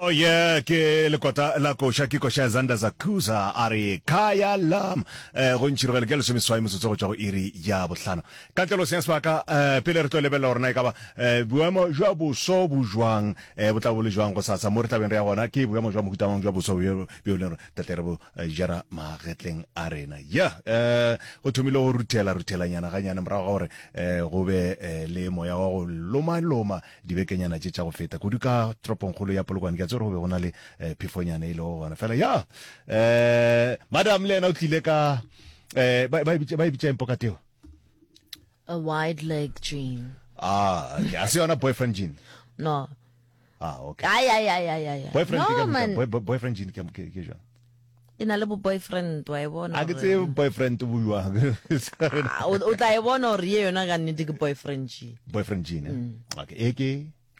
Oh yeah, ke lekota la koša ke koša ya Zander Zakuza a re Kaya Lam eh, go ntšhirogele ke lesomeswai motsotso go tšwa go iri ya bohlano ka tleloseng ya sebaka eh, pele re tlo lebelela gorena e ka ba eh, boemo jwa boso bo jwang eh, bo tla bo le jwang go sasa mo re tlabeng re ya gona ke boemo jwa mohutamang jwa boso bjo bjo le gore tle re bo eh, jera magetleng a rena ya eh, go thomile go ruthela ruthelanyana ganyane morago ga gore eh, go be eh, le moya wa go lomaloma dibekenyana tše tša go feta kudu ka tropongkgolo ya polokwane ke a tse gore go be go na le eh, phefonyana e lego gona fela ya eh, madam le yena o tlile ka eh, ba e bitša e eng pokateo a wide leg jean ah okay. a se yona boyfriend jean no ah okay ay ay ay ay ay boyfriend no, ke, man. Boy, boyfriend jean ke ke jang e na le bo boyfriend wa e bona a ke tse boyfriend o buiwa ah, o tla e bona gore ye yona ka nnete ke boyfriend jean boyfriend jean eh? mm. okay e ke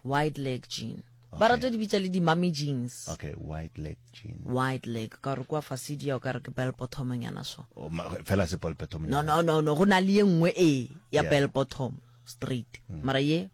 white leg jean ba rata di bitsa le di-mummy jeans okay white leg jean white leg ka gore kwa fasidi ya o ka re ke bell bottom nyana so oh, fela se bell bottom no no no no go na le ye nngwe e ya bell bottom straight mm. mara ye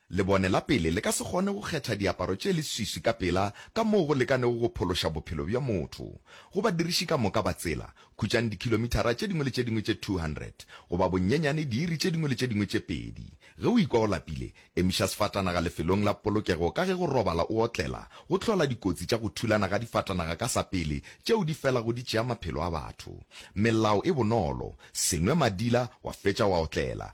Lebone la pele le ka se kgone go kgetha diaparo tše leswiswi ka pela ka moo go lekanego go phološa bophelo bja motho. Go badiriši ka moka ba tsela, khutšang dikhilomithara tše dingwe le tše dingwe tše 200, goba bonyenyane diiri tše dingwe le tše dingwe tše pedi. Ge o ikwa o lapile, emiša sefatanaga lefelong la polokego ka ge go robala o otlela go hlola dikotsi tša go thulana ga difatanaga ka sa pele tšeo di felago di tšea maphelo a batho. Melao e bonolo, Se nwe madila wa fetša wa otlela.